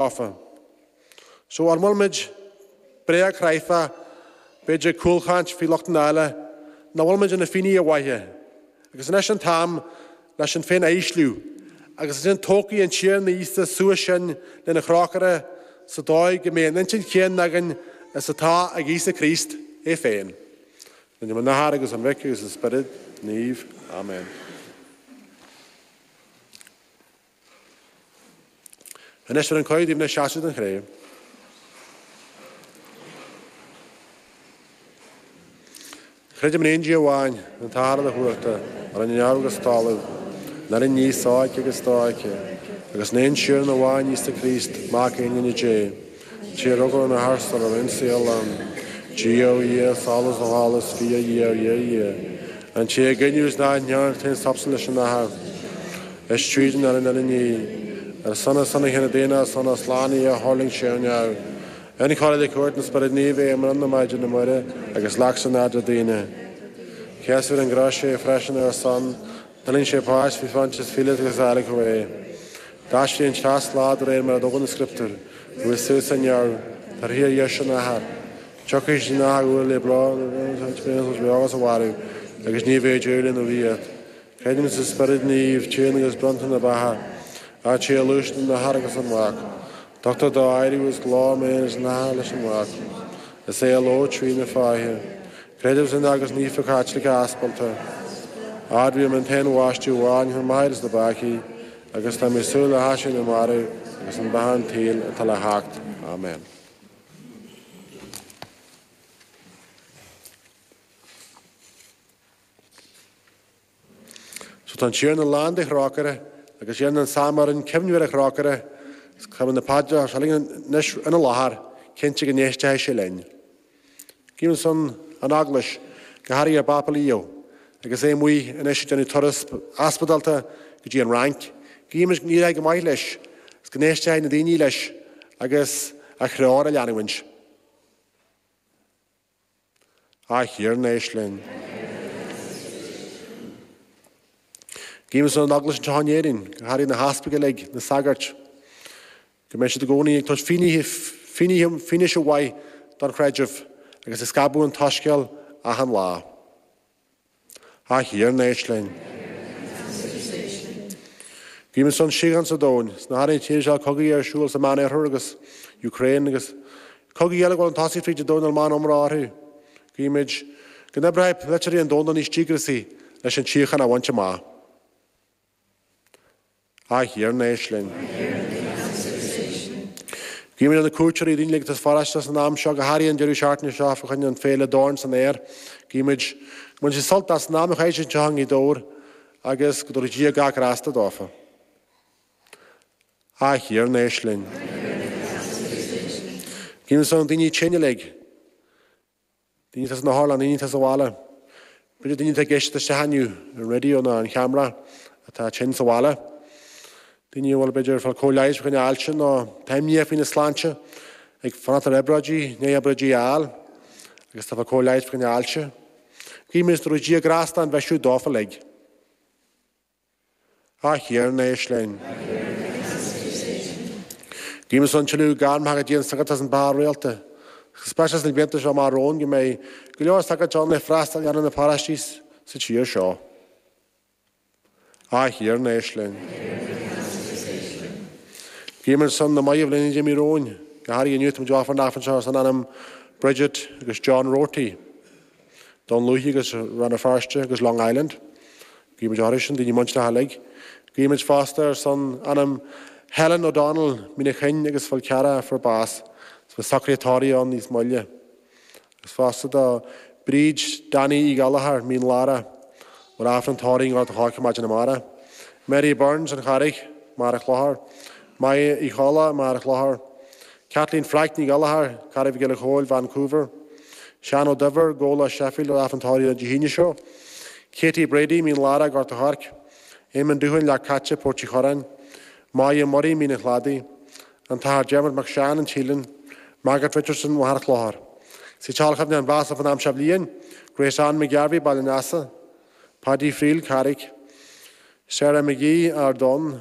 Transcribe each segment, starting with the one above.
tofa. So an bhfuil muid bréagchráifeach, b'fhéidir cúlchaint faoi lochtanna eile, nach bhfuil muid inár bhfinnéithe maithe, agus anois an t-am le sinn féin a ísliú, agus ansin tógfaidh an Tiarna Íosa suas sinn lena thrócaire sa dóigh go mbeidh an intinn chéanna againn is atá ag Íosa Críost é féin. In ainm an Athar agus an Mhic agus an Spioraid Naoimh. Amen. Anois tugaim cuireadh daoibh le seasamh don Chré. Creidim in aon Dia amháin, an tAthair uilechumhachtach, a rinne neamh agus talamh, an uile ní sofheicthe agus dofheicthe, agus in aon Tiarna amháin, Íosa Críost, Mac Aonghine Dé, Téir óga na harstan ar an saol an Dia ó Dhia, solas ó sholas, Fia ó Dhia ó Dhia ó Dhia. An té a geineadh is nach ndearna taon sapsa leis an nathair, is tríd an oileán ar an ní. Ar son is sona chéanna daonna is sona slán í a thuirling sé ó neamh. Incháilithe le cuairt an Spioraid Naoimh é i mbrón na Maighdine Muire agus leac san airde daoine. Sheas fir an gcrois é freisin ar a son, D'ainneoin sé páis, bhí Frances Phillips agus Alec Ray. D'aistrigh an teas slad aréir mar a dtugann an scrioptúr, go bhfuil suas á ndearadh, torthaí ar dheis an athar. Tiocfaidh sí na h-uair le bráth nuair a bhíonn an spéis os bheag as a mharú, agus ní bheidh Éire ina luí ait. Creidim sa spiorad naoimh, tinn agus bronnta na beatha, áit sé a luaist an athar agus an mhac. Tugtar dá éirí os glór méin is natha leis an mhac. Is é a ló trína fáithe. Creidim san aon Eaglais Naofa Chaitliceach Aspalda, admhaím an t-aon bhaisteadh amháin chun maithiúnas na bpeacaí, agus táim ag súil le haiséirí na marbh agus le beatha an tSaoil atá le theacht. Amen. Tá an Tiarna lán de thrócaire, agus iarrann an Salm orainn cuimhneamh ar a thrócaire, agus cuirimid na paidreacha seo linn anois ina láthair, cinnte go n-éistfidh sé linn. Guímis ar son an Eaglais, go háirithe ár bPápa Leo, agus é amuigh anois ag déanamh turas aspidálta go dtí an Fhrainc, guímis go n-éireoidh go maith leis, agus go n-éistfidh na daoine leis agus a threoir a leanúint. A Thiarna, éist linn. Guímis ar son an Eaglais anseo in Éirinn, go háirithe na heaspaig uilig, na sagairt, go mbeidh siad i gcónaí ag tabhairt fianaise mhaith don chreideamh agus ag scaipeadh an tsoiscéil achan lá. A Thiarna, éist linn. Guímid ar son síocháin sa domhan, go háirithe na tíortha seo cogaí ar siúl sa Meánoirthear agus Ukraine agus cogaí eile ag gabháil chun tosaigh fríd an domhan nach bhfuil mórán iomrá orthu. Guímid go n-oibreoidh polaiteoirí an domhain níos díograisí leis an tsíocháin a bhaint amach. A Thiarna, éist linn. Guímid ar na cuairteoirí uilig atá sa pharóiste san am seo go háirithe an deireadh seachtaine seo fá choinne an féile Dorn san Aer. Guímid go mbainfidh siad sult as an am a chaitheann siad i nGaoth Dobhair agus go dtabharfaidh Dia gach grásta dófa. A Thiarna, éist linn. Guímid ar son daoine tinne uilig Daoine atá sna hotharlanna, daoine atá sa bhaile. B'fhéidir daoine atá ag éisteacht isteach inniu ar raidió nó ar an cheamara atá tinn sa bhaile. Daoine a bhfuil b'fhéidir ag fáil cóir leighis fá choinne ailse nó atá imníoch faoina sláinte ag fanacht ar obráidí, i ndiaidh obráidí a fháil agus atá ag fáil cóir leighis fá choinne ailse. Guímid go dtabharfaidh Dia grásta an bhisiú dófa uilig. A Thiarna Éist linn. Guímid ar son tuilleadh gairmeacha don tsagartacht is an bheatha rialta. Go speisialta sna blianta seo amach romhainn go mbeidh go leor sagart ann le freastal a dhéanamh ar na paróistí sa tír seo. A Thiarna Éist linn. Guímid ar son na mairbh uilig a d'imigh romhainn. Go háirithe inniu tá muid ag ofráil an Aifrinn seo ar son anam Bridget agus John Roarty. Dún Lúiche agus Rann na Feirste agus Long Island. Guímid orthu sin, daoine muinteartha uilig. Guímid fosta ar son anam Helen O'Donnell, Mín na Cuinge agus Fál Carrach a fuair bás. Is beidh socruithe tórraimh ann níos moille. Agus fosta do Bríd Danny Uí Ghallchóir, Mín Lárach, a bhfuil Aifreann tórraimh i nGort an Choirce maidin amárach. Mary Burns, An Charraig, Machaire Chlochair. Máire Uí Cholla, Machaire Chlochair. Caitlín Frank Ní Ghallchóir, Carraig a' Choill, Vancouver, Seán Ó Duibhir, Gabhla, Sheffield, a bhfuil Aifreann tórraimh Dé hAoine seo, Katie Brady, Mín Lárach, Gort a' Choirce, Éamonn Doohan, Leac Caite, Port Uí Churráin, May Murray, Mín an Chladaigh, An tAthair Dermot Mac Seáin, Teileann, Margaret Richardson, Machaire Chlochair. Siúd a bhfuil cuimhne a mbáis fán am seo bhliain, Grace Anne McGarvey, Baile an Easa, Paddy Friel, Carraig, Sarah McGee, Ard Donn,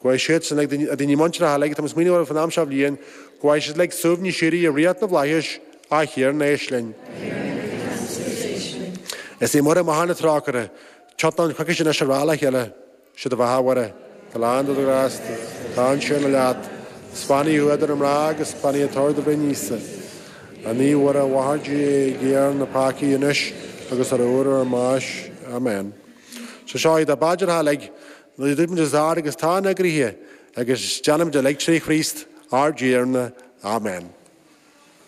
go bhfaighidh siad sin ár ndaoine muinteartha uilig atá muid ag smaoineamh orthu fán am seo bhliain go bhfaighidh siad uilig suaimhneas síoraí i ríocht na bhflaitheas. A Thiarna, éist linn. Is í Muire máthair na trócaire. Tiontaímid chuici anois ag rá le chéile, sé do bheatha a Mhuire, atá lán de ghrásta, tá an Tiarna leat, is beannaithe thú idir na mná agus is beannaithe toradh do bhroinne Íosa. A Naomh Mhuire a mháthair Dé guigh orainn na peacaigh anois agus ar uair ár mbáis. Amen. So seo iad ár bpaidreacha uilig A dúirt muid os ard, agus atá inár gcroíthe, agus déanaimid uilig tré Chríost ár dTiarna. Amen.